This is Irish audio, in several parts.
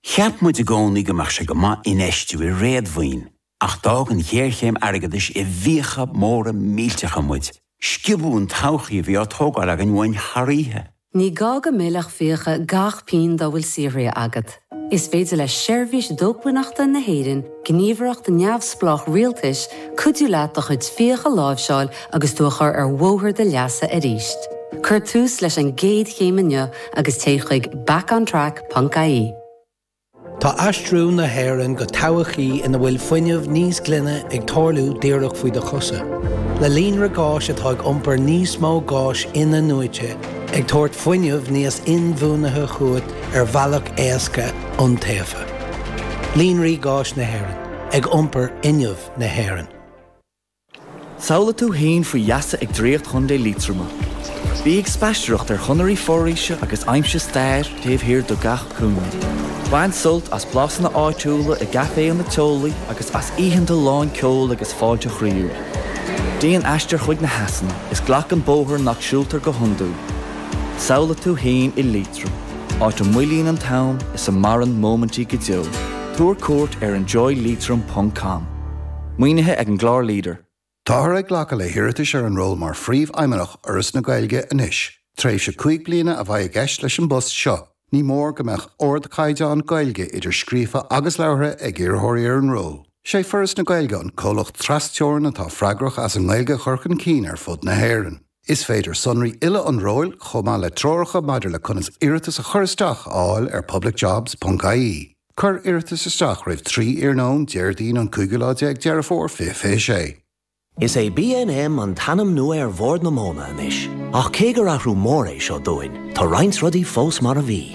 Cheap muid i gcónaí go mbeadh sé go maith infheistiú i réadmhaoin, ach d'fhág an ghéarchéim airgeadais i bhfiacha móra millteacha muid. Sciobadh an todhchaí a bhí á tógáil againn uainn thar oíche. Ní gá go millfeadh fiacha gach pínn dá bhfuil saothraithe agat. Is féidir le Seirbhís Dócmhainneachta na hÉireann gníomhaireacht neamhspleách rialtais cuidiú leat do chuid fiacha a láimhseáil agus tú a chur ar bhóthar do leasa arís. Cuir tús leis an gcéad chéim inniu agus téigh chuig backontrack.ie. Tá aistriú na hÉireann go todhchaí ina bhfuil fuinneamh níos glaine ag tarlú díreach faoi do chosa. Le líonra gáis atá ag iompar níos mó gáis in-athnuaite, ag tabhairt fuinneamh níos inbhuanaithe chugat ar bhealach éasca, iontaofa. Líonraí Gáis Éireann, ag iompar fhuinneamh na hÉireann. Samhlaigh tú fhéin faoi gheasa ag draíocht Chontae Liatroma. Bí ag spaisteoireacht ar chonairí foraoise agus aimsigh stair taobh thiar de gach cúinne. Bain sult as blasanna áitiúla i gcaiféanna teolaí agus as oícheanta lán ceoil agus fáilte chroíúil. Déan aistear chuig na heasanna is glac an bóthar nach siúltar go hiondúil. Samhlaigh tú fhéin i Liatroim. áit a moillíonn an t-am is a maireann móimintí go deo. Tabhair cuairt ar enjoyleitrim ponc com. Maoinithe ag an gclár LEADER. Táthar ag glacadh le hiarratais ar an ról mar Phríomhfheidhmeannach Fhoras na Gaeilge anois. Tréimhse cúig bliana a bheidh i gceist leis an bpost seo. Ní mór go mbeadh ardchaighdeán Gaeilge, idir scríofa agus labhartha, ag iarrthóirí ar an ról. Is é Foras na Gaeilge an comhlacht tras-teorann atá freagrach as an nGaeilge a chur chun cinn ar fud na hÉireann. Is féidir sonraí uile an róil, chomh maith le treoracha maidir le conas iarratas a chur isteach, a fháil ar publicjobs.ie. Cuir iarratas isteach roimh 3 iarnóin Déardaoin an cúigiú lá déag Deireadh Fómhair 2026. Is é BNM an t-ainm nua ar Bhord na Móna anois, ach cé gur athrú mór é seo dúinn, tá roinnt rudaí fós mar a bhí.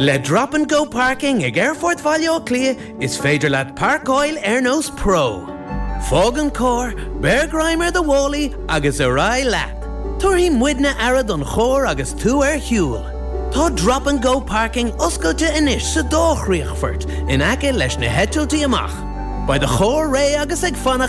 Le Drop and Go Parking ag Aerfort Bhaile Átha Cliath is féidir leat páirceáil ar nós pro. Fág an carr, beir greim ar do mhálaí agus ar aghaidh leat. Tabharfaidh muidne aire don charr agus tú ar shiúl. Tá Drop and Go Parking oscailte anois sa dá chríochfort in aice leis na heitiltí amach. Beidh do charr réidh agus ag fanacht